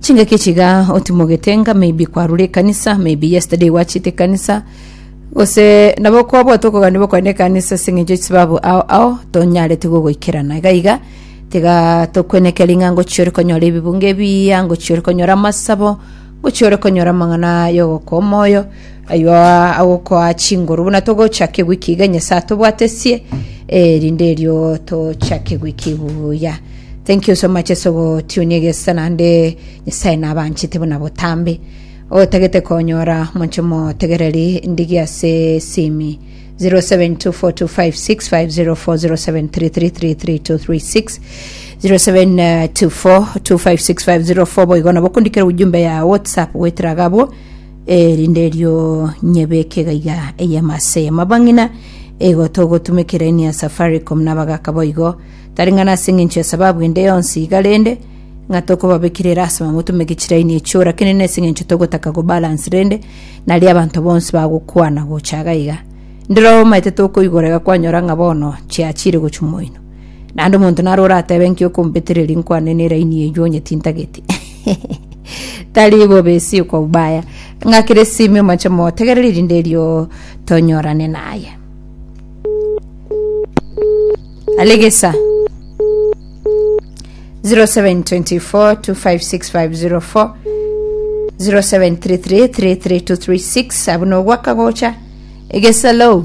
Chingaki chiga otimogete ng'a maybe kwarure ekanisa, maybe yesterday gwachiete ekanisa, gose nabo kwabwate okoganiwa okogenda ekanisa ase eng'encho y'esababu ao ao, tonyarete gogoikerana. Iga iga, tiga tokweneke ring'a ngochia ore konyora ebibungo ebiya, ngochia ore konyora amasabo, ngochia ore konyora amang'ana y'ogokoa omoyo, Ayio agokoa chinguru buna togochake wiki iga Nyasae atobwatesie erinde erio tochake wiki buya. Thank you so much ase ogotunia egesa naende Nyasae nabanchete buna botambe. Otagete konyora monche motegereri ndigi ase simi 0724256507333336 0724256504 boigo nabo okondikera ujumbe ya WhatsApp goetera gabo Eri nderio nyebeke iga iga eyemo ase eyemo. Abang'ina, igo togotumekera ini ya Safaricom na abagaka boigo, tari ng'a nase eng'encho ya sababu ende yonsi iga rende, ng'a tokobabekera erasima motumeke chiraini echio, rakini nase eng'encho togotaka go balance rende, nario abanto bonsi bagokwana gocha iga iga. Ndiroomaete tokoigora iga kwanyora ng'a bono chiachire gochia moino. Naende omonto naro orateebe inki okombetereria nkwane neraini eyio onyetintageti tari bobe si kwa ubaya ng'akire simi omache motegerere erinde erio tonyorane naye alegesa 0724256504 07333336 abuna ogwaka gocha egesa low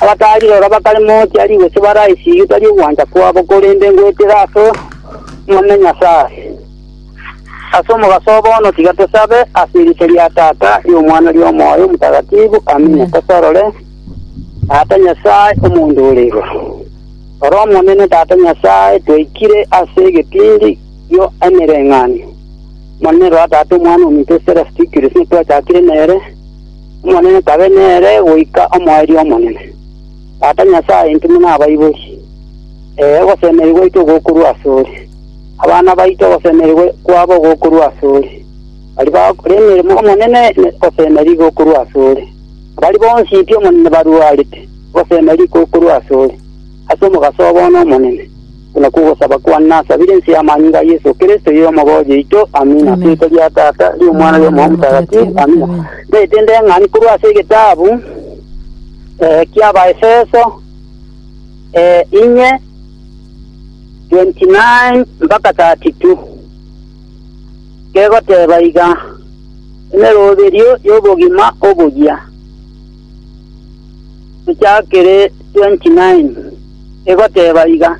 Abatari rora bakare mochia rigoso baraisigie tari ogwancha kwabo, korende ngoetera ase Omonene Nyasae. Ase omogaso oo bono tiga tosabe ase erieta ria Tata, ri'Omwana, ri'Omoyo Omotagatifu. Amina. Tosorore Tata Nyasae omonto ore igoro. Rora Omonene Tata Nyasae, twaikire ase egetindi gio emereng'anio. Omonene rora Tata Omwana ominto Serasitikirusi, twachakire nere, Omonene tabe nere goika omoerio omonene. Tata Nyasae, intwe buna abaibori, ee, ogosemeria gwaito gokorwa asore. Abana baito ogosemeria kwabo gokorwa asore, baria bagokora emeremo y'Omonene ogosemeria gokorwa asore. Na baria bonsi pi Omonene baruarete, ogosemeria gokorwa asore, ase omogaso obo one Omonene. Buna kogosaba kwane nasabire inse y'amanyinga a Yeso Kristo ye Omogoji oito. Amina. Ase erieta ria Tata, ri'Omwana, ri'Omoyo Motagatifu. Amina. Naete ndeng'ani korwa ase egetabu ki'Abaefeso, inye, 29-32, kegoteba iga, Emeroberio y'obogima oboyia. Echakere 29 egoteba iga,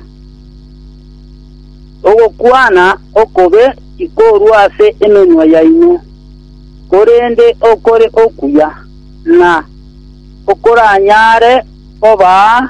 Ogokwana okobe tikorua ase emenwa yaino, korende okore okuya, na okoranyare kobaa